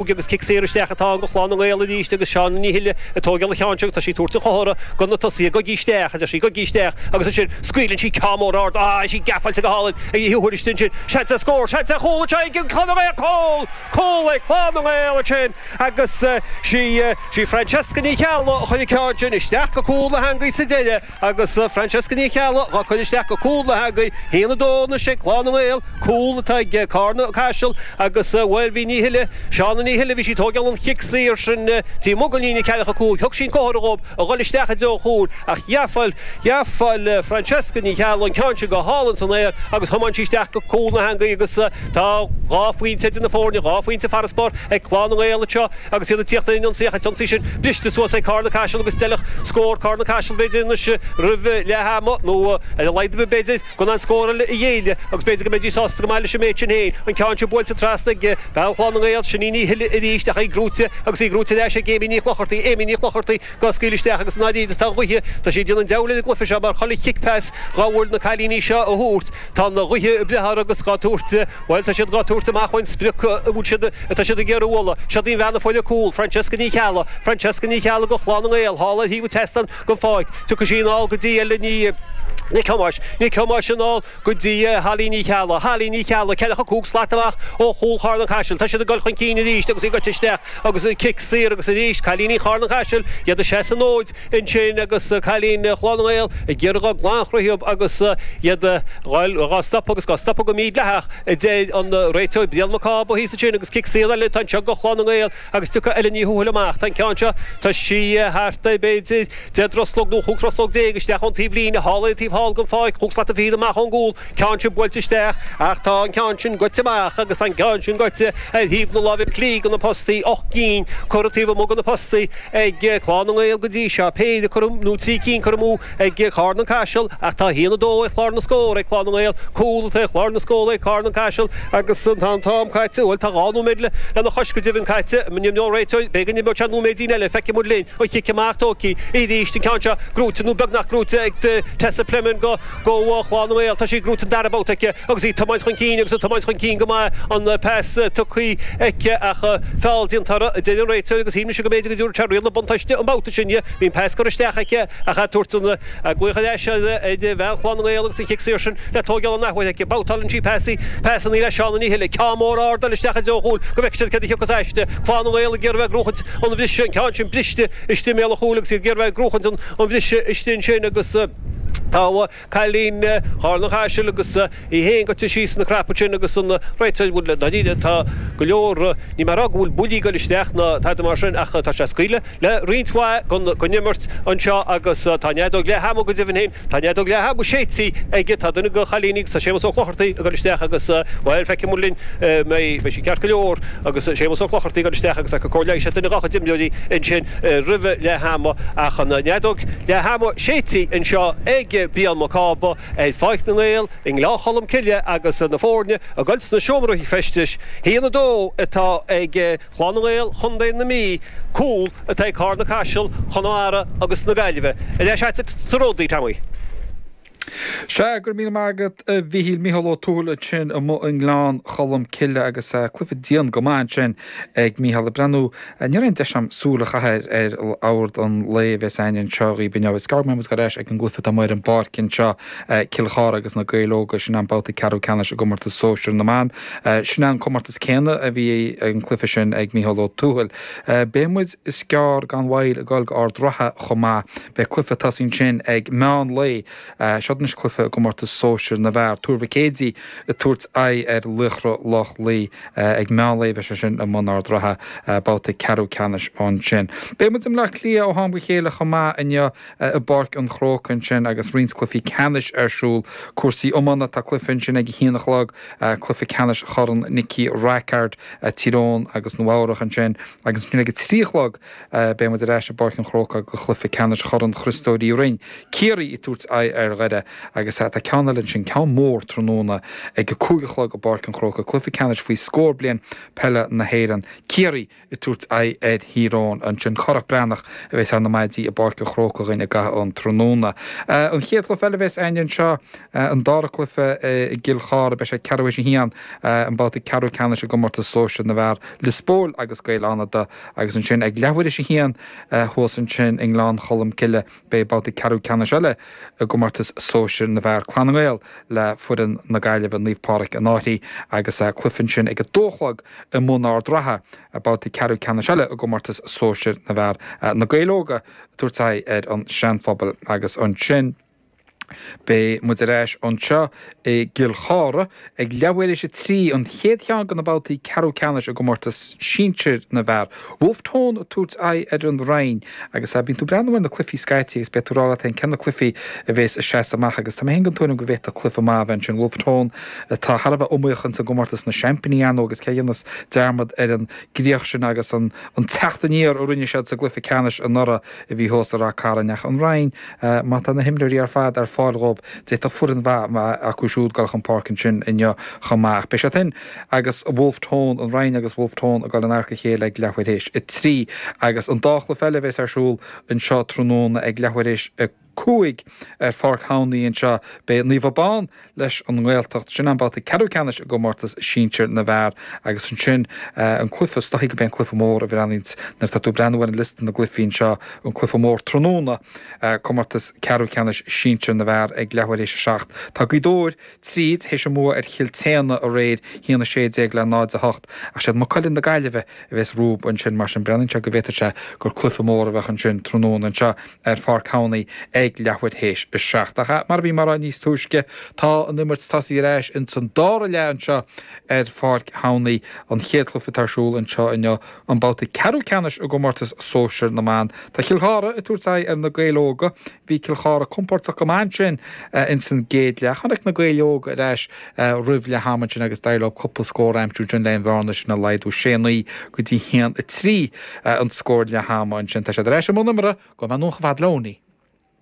Óg agus cic saor isteach atá ann go Clann na nGael arís agus Seána Ní Shúilleabháin ag tóigeáil an ceann seo agus tá sí ag tabhairt an chomhartha go na tosaithe goidí isteach, a deir sí, goidí isteach agus ansin scaoileann sí ceann mór ard ah is í gafa go hálainn aici thuas ansin seans ar scór seans ar chúl anseo ag Clann na nGael cúl! cúl ag Clann na nGael ansin agus sí Francesca Ní Cheallaigh a chuir an ceann sin isteach go cúl na heangaí sa deireadh. Agus Francesca Ní Cheallaigh dhá cur isteach go cúl na heangaí haon a dó anois ag Clann na nGael, cúl atá ag Carna-Caiseal agus bhuel bhí Ní Shuile, Shauna Ní Shuile, bhí sí ag tóigeáil an chic saor sin taobh amuigh gon líne ceathracha a cúig, thug sí an comhartha dhób a dhul isteach i dtreo an chúil ach ghabháil, ghabháil Francesca Ní Cheallaigh an ceann sin go hálainn san aer agus thiomáin sí isteach go cúl na heangaí agus tá dhá phointe idir na foirne, dhá phointe farasbarr ag Clann na nGael anseo. Agus iad ag tíocht ar an ionsaí ach an t-ionsaí sin briste suas ag Carna-Caiseal agus d'fheilfeadh scór do Charna-Caiseal b'fhéidir anois roimh leath ama nó ar a laghad b'fhéidir gan aon scór eile a ghéilleadh agus b'fhéidir go mbeidís sásta go maith leis an méid sin féin. An ceann sin buailte trasna ag bean Chlann na nGael, Shauna Ní Shill arís ach í brúite agus í brúite ar ais ag Amy Ní Chlochartaigh, Amy Ní Chlochartaigh, Dhá scaoileadh isteach agus an fhadhb atá, tá an ghaoth, tá sé ag déanamh an deabhail ar an gcluife seo mar chuile chic pass dhá bhfuil na cailíní seo a thabhairt tá an ghaoth ag breith orthu agus dhá tabhairt bhuel tá siad dhá tabhairt amú ón sprioc a bhfuil siad atá siad ag iarraidh a bhualadh seo d'aon bhean a foireann cúl Francesca Ní Cheallaigh Francesca Ní Cheallaigh go Chlann na nGael thall ar thaobh an tseastáin go fóill tiocfaidh sí anall go dtí Ella Ní Nic Thomáis Nic Thomáis anall go dtí Holly Ní Cheallaigh. Holly Ní Cheallaigh, ceathracha cúig slat amach ó chúl Charna-Caisil. Tá siad ag dul chun cinn arís agus í goite isteach agus cic saor agus arís cailíní Charna-Caisil iad ag seasamh an fhóid ansin agus cailín Chlann na nGael ag iarraidh dul glan thríothub agus iad dhá stopadh agus dhá stopadh go mídhleathach, a deir an réiteoir Brian Mac Cába thíos ansin agus cic saor eile ansin go Clann na nGael. Agus tiocfaidh Ellen Ní Thuathail amach, tá an ceann seo, tá sí thart ar, b'fhéidir, deich dtruslóg nó chúig thruslóg déag isteach ón taobh líne, thall ar an taobh thall den pháirc, chúig slata fichead amach ón gcúl, ceann sin buailte isteach ach tá an ceann sin goite amach agus tá an ceann sin goite ar thaobh na láimhe clí de na postaí, ocht gcinn curtha taobh amuigh de na postaí ag Clann na nGael go dtí seo, péire curtha, nó trí cinn curtha amú. ag Carna-Caiseal ach tá 1-2 ag clár na scór ag Clann na nGael, cúl atá ar chlár na scór ag Carna-Caiseal agus tá an t-am caite, bhuel tá dhá nóiméad lena chois go deimhin caite, níl mé, an réiteoir, b'fhéidir imreoidh sé nóiméidín eile, feicfidh muid linn, an chic amach tógtha arís an ceann seo, buaite nó beagnach buaite ag Tessa Plimmen go Clann na nGael, tá sí buaite an dara babhta aici agus í ag tiomáint chun cinn agus ag tiomáint chun cinn go maith, an pas tugtha aici ach feall déanta uirthi, deir an réiteoir agus shíl mise go mb'fhéidir go dtabharfadh sé riail na buntáiste an babhta sin di. Bhí an pas curtha isteach aici ach a' tabhairt an glaoch ar ais ar bhean Chlann na nGael agus an chic saor sin le tóigeáil an athuair aici. Babhtáileann sí pas í, pas an fhile Seán an Fhithil, ceann mór ard ag dul isteach i dtreo chúil go bhfeice siad céard a thiocfas aisti. Clann na nGael ag iarraidh a bheith ag cruachaint ar an mbriseadh, an ceann sin briste istigh i mbéal an chúil agus iad ag iarraidh a bheith ag cruachaint ar an mbriseadh istigh ansin agus tá a. cailín Charna-Caiseal agus í féin gaibhte síos ina crap ansin agus an réiteach a bhfuil le déanamh aici. Tá go leor, níl mé ag rá go bhfuil buillí ag dul isteach ná tada mar sin ach tá sé ag scaoileadh le roinnt mhaith den imirt anseo agus tá an fheadóg leath ama, go deimhin féin, tá an fheadóg leath ama séidte aici. Tá duine de na cailíní agus tá Séamus Ó Clochartaigh ag dul isteach agus, bhuel, feicfimid linn, beidh sé ceart go leor agus Séamus Ó Clochartaigh ag dul isteach agus ag cur comhairle, is é duine dá chuid imreoirí ansin. roimh leath ama ach an fheadóg leath ama séidte anseo ag Brian Mac Cába ar Pháirc na nGael i nGleann Cholm Cille agus na foirne ag dul sna seomraí feistis. a haon a dó atá ag Clann na nGael Chontae na Mí cúl atá ag Carna-Caiseal, Chonamara agus na Gaillimhe a leath-sheasamh sa ród Oíche Shamai. Sea, go raibh míle maith agat a Mhichíl, Mícheál Ó Tuathail ansin amuigh i nGleann Cholm Cille agus cluiche dian go maith ansin ag Mícheál ag breathnú. Ní raibh aon deis agam súil a chaitheamh ar chlár an lae a bheas againn anseo dhaoibh inniu. Is gearr go mbeidh muid ar ais ag an gcluiche atá amuigh ar an bpáirc anseo, Cill Chartha agus na Gaeil Óga, sin é an babhta ceathrú ceannais i gcomórtas sóisear na mban. Sin é an comórtas céanna a bhí an cluiche sin ag Mícheál Ó Tuathail. Beidh muid. Is gearr gan mhoill ag goil go Ard Ratha chomh maith. Beidh cluiche ag tosú ansin ag meán lae. Seo anois cluiche i gcomórtas sóisir na bhfear. Tuar Mhic Éadaigh ag tabhairt aghaidh ar Laochra Loch Lao. Ag meán lae a bheas sé sin i mBaile Ard Ratha, babhta ceathrú ceannais ansin. Beidh muid i mBleá Cliath ó am go chéile chomh maith inniu i bPáirc an Chrócaigh ansin agus roinnt cluichí ceannais ar siúl. Cúrsaí iomána, tá cluiche ansin ag a haon a chlog, cluiche ceannais Chorn Nicky Rackard, Tír Eoghain agus Nua-Eabhrac ansin. Agus ansin ag a trí a chlog beidh muid ar ais i bPáirc an Chrócaigh do chluiche ceannais Chorn Chriostóir Uí Rinn, Ciarraí ag tabhairt aghaidh ar Dhoire. Agus tá ceann eile ansin, ceann mór, tráthnóna ag a cúig a chlog i bPáirc an Chrócaigh, cluiche ceannais faoi scór bliain peile na hÉireann, Ciarraí ag tabhairt aghaidh ar Thír Eoghain ansin. Cárthach Breathnach a bheas ar na maidí i bPáirc an Chrócaigh dúinn i gcaitheamh an tráthnóna. An chéad chluiche eile a bheas againn anseo, an dara cluiche i gCill Chartha, beidh sé ag ceathrú théis a haon, an babhta ceathrú ceannais i gcomórtas sóisir na bhfear. Lios Póil agus Gaeil Fhánada agus ansin ag leathuair théis a haon thuas ansin i nGleann Cholm Cille beidh babhta ceathrú ceannais eile i gcomórtas sóisir na bhfear, Clann na nGael le foireann na Gaillimhe, Naomh Pádraig an Fhairche agus cluiche ansin ag a dó a chlog i mBaile Ard Ratha, babhta ceathrú ceannais eile i gcomórtas sóisir na bhfear, Na Gaeil Óga ag tabhairt aghaidh ar an Seanphobal agus ansin. Beidh muid ar ais anseo i gCill Chartha ag leathuair théis a trí, an chéad cheann de na babhtaí ceathrú ceannais i gcomórtas sinsir na bhfear. Wolfe Tone ag tabhairt aghaidh ar an Rinn agus bíonn tú ag breathnú ar na cluifí scaití agus beidh tú ag rá leat féin cé na cluifí a bhéas ag seasamh amach agus tá mé féin den tuairim go bhféadfadh cluiche maith a bheith ansin. Wolfe Tone atá thar a bheith iomaíoch ins an gcomórtas na seaimpíní ar ndóigh agus cé a dhéanfas dearmad ar an gcríoch sin agus an teacht aniar a rinne siad sa gcluiche ceannais anuraidh. a bhí thuas i Ráth Cairn ach an Rinn. Má tá na himreoirí ar fad ar fáil dhóibh, d'fhéadfadh foireann mhaith a bheith acu siúd ag dul chun páirce ansin inniu chomh maith. Ach beidh siad sin agus Wolfe Tone, an Rinn agus Wolfe Tone ag dul in adharca a chéile ag leathuair théis a trí agus an dá chluiche eile a bheas ar siúl anseo tráthnóna ag leathuair théis a cúig ar Pháirc Thamhnaí anseo. Beidh Naomh Abán leis an nGaeltacht, sin an babhta ceathrú ceannais i gcomórtas sinsir na bhfear agus ansin an cluiche is dóichí go mbeidh an cluiche mór a bhreathnaíonn nuair atá tú ag breathnú ar an liosta na gcluichí anseo an cluiche mór tráthnóna comórtas ceathrú ceannais sinsir na bhfear ag leathuair théis a seacht. Tá Gaoth Dobhair tríd théis a mbua ar Chill tSéadhna aréir, 1 16 le 0 8, ach siad Maigh Cuilinn na Gaillimhe a bheas rompu ansin. Mar sin, breathnaíonn sé go bhféadfadh sé gur cluiche mór a bheadh ansin tráthnóna anseo ar Pháirc Thamhnaí ag leathuair théis a seacht. Ach mar a bhí mé a rá níos túisce tá an imirt tosaithe ar ais ins an dara leath anseo ar Pháirc Thamhnaí. An chéad cluiche atá ar siúl anseo inniu, an babhta ceathrú ceannais i gcomórtas sóisear na mban. Tá Cill Chartha ag tabhairt aghaidh ar Na Gaeil Óga. Bhí Cill Chartha compordach go maith ansin ins an gcéad leath. Tháinig Na Gaeil Óga ar ais roimh leath ama ansin agus d'éirigh leo cúpla scór a aimsiú ansin le an bhearna sin a laghdú, sé, naoi go dtí haon, a trí an scór leath ama ansin. Tá siad ar ais i mbun imeartha go mb'anuas i bhfad leo, ní.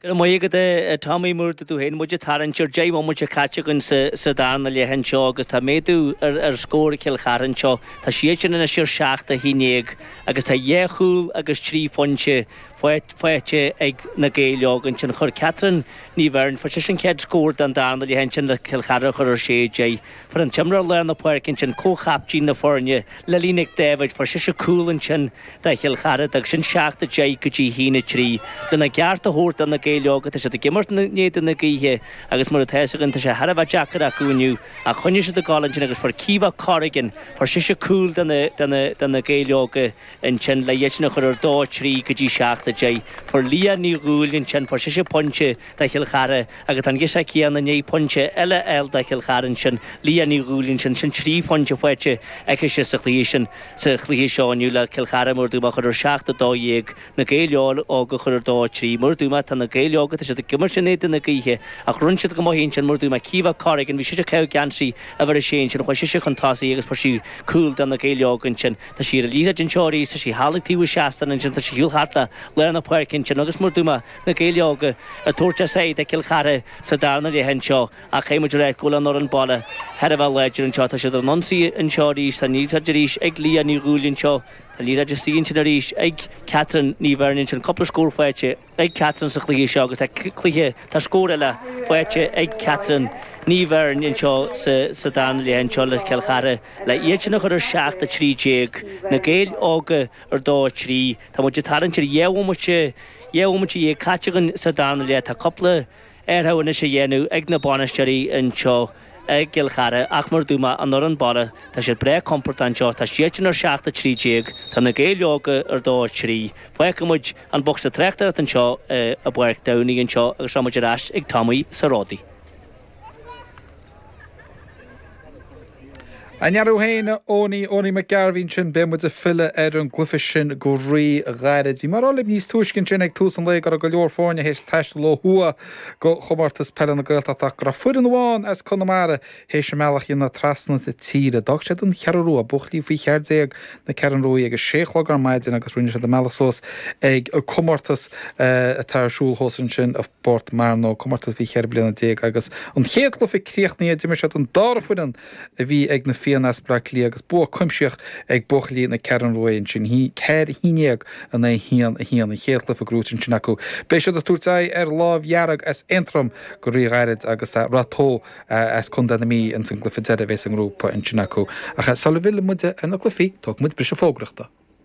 Go raibh maith agat a Tommy, mar a dúirt tú féin muid ag tarraingt ar deich mbomaite caite againn sa darna leath anseo agus tá méadú ar scór Chill Chartha anseo. Tá siadsan anois ar seacht a haon déag agus tá dhá chúl agus trí phointe faighte ag Na Gaeil Óga ansin. Chuir Catherine Ní Bheirn, fuair sise an chéad scór den darna leath ansin le Cill Chartha a chur ar 6-10. Fuair an t-imreoir lár na páirce ansin, comhchapteín na foirne, Lily Nic Dáibhéid, fuair sise cúl ansin do Chill Chartha. D'fhág sin 7-10 go dtí haon a trí. Lena gceart a thabhairt do Na Gaeil Óga tá siad ag imirt in éadan na gaoithe agus mar atá a fhios againn tá sé thar a bheith deacair acu inniu ach choinnigh siad ag gabháil ansin agus fuair Caoimhe Corrigan, fuair sise cúl do Na Gaeil Óga. Ansin le iadsan a chur ar dó 3 go dtí 7 a deich. Fuair Liadh Ní Dhúill ansin, fuair sise pointe do Chill Chartha agus tá an ghirseach chéanna i ndiaidh pointe eile a fháil do Chill Chartha ansin. Liadh Ní Dhúill ansin, sin 3 phointe faighte aici sa chluiche sin, sa chluiche seo inniu le Cill Chartha mar a dúirt mé a chur ar 7 a 12 na Gaeil óga a chur ar dó 3 mar a dúirt mé tá na Gaeil óga tá siad ag imirt in éadan na gaoithe ach rinne siad go maith ansin mar a dúirt mé Caoimhe Corrigan bhí sise Caoimhe Gentry uimhir 6 ansin chuaigh sise chun tosaigh agus fuair sí cúl do na Gaeil óga ansin. Tá sí an liathróid anseo arís tá sí thall ag taobh an tseastáin ansin tá sí ar shiúl thart le lár na páirce ansin agus mar a dúirt mé na Gaeil Óga ag tabhairt a sáith do Chill Chartha sa darna leath anseo ach caithfidh muid a rá go bhfuil an fhoireann baile thar a bheith láidir anseo tá siad ar an ionsaí anseo arís tá an liathróid arís ag Leah Ní Dhúill anseo tá an liathróid istigh ansin arís ag Catherine Ní Bheirn ansin cúpla scór faighte ag Catherine sa chluiche seo agus tá cluiche, tá scór eile faighte ag Catherine Ní Bheirn anseo sa darna leath anseo le Cill Chartha le iad sin a chur ar 7, 13, Na Gaeil Óga ar 2, 3. Tá muid ag tarraingt ar dhá bhomaite, dhá bhomaite dhéag caite againn sa darna leath. Tá cúpla. athrú anois a dhéanamh ag na bainisteoirí anseo i gCill Chartha ach mar a dúirt mé an fhoireann baile tá siad breá compordach anseo, tá siadsan ar 7 13, tá na Gaeil óga ar 2 3. Fágfaidh muid an bocsa tráchtaireacht anseo i bPáirc Tamhnaigh anseo agus tá muid ar ais ag Tommy sa ródaí. An-mhaith go deo, a Eoghain, Eoghan Mac Gairbhín sin, beidh muid ag filleadh ar an gcluiche sin go rí-ghairid. Bhí mé ag rá libh níos túisce ansin ag tús an lae go raibh go leor foirne théis taisteal ó thuaidh go Comórtas Peile na Gaeltachta ach go raibh foireann amháin as Conamara théis a mbealach a dhéanamh trasna na tíre. D'fhág siad an Cheathrú Rua, buachaillí faoi cheathair déag na Ceathrún Ruaidh, ag a sé a chlog ar maidin agus rinne siad a mbealach suas ag comórtas atá ar siúl fós ansin i bPort Mearnóg comórtas faoi cheithre bliana déag agus an chéad cluiche críochnaithe d'imir siad an dara foireann a bhí ag na Fianna as Bleá Cliath agus bua cuimsitheach ag buachaillí na Ceathrún Ruaidh ansin ceathair a haon dhéag in aghaidh a haon a haon an chéad chluife grúite ansin acu beidh siad ag tabhairt aghaidh ar Lámh Dhearg as Aontroim go rí ghairid agus ar Ráth Tó as Contae na Mí insa gcluife deire a bhéas sa ngrúpa ansin acu ach sul a bhfillfidh muid ar na cluifí tógfaidh muid briseadh fógrachta.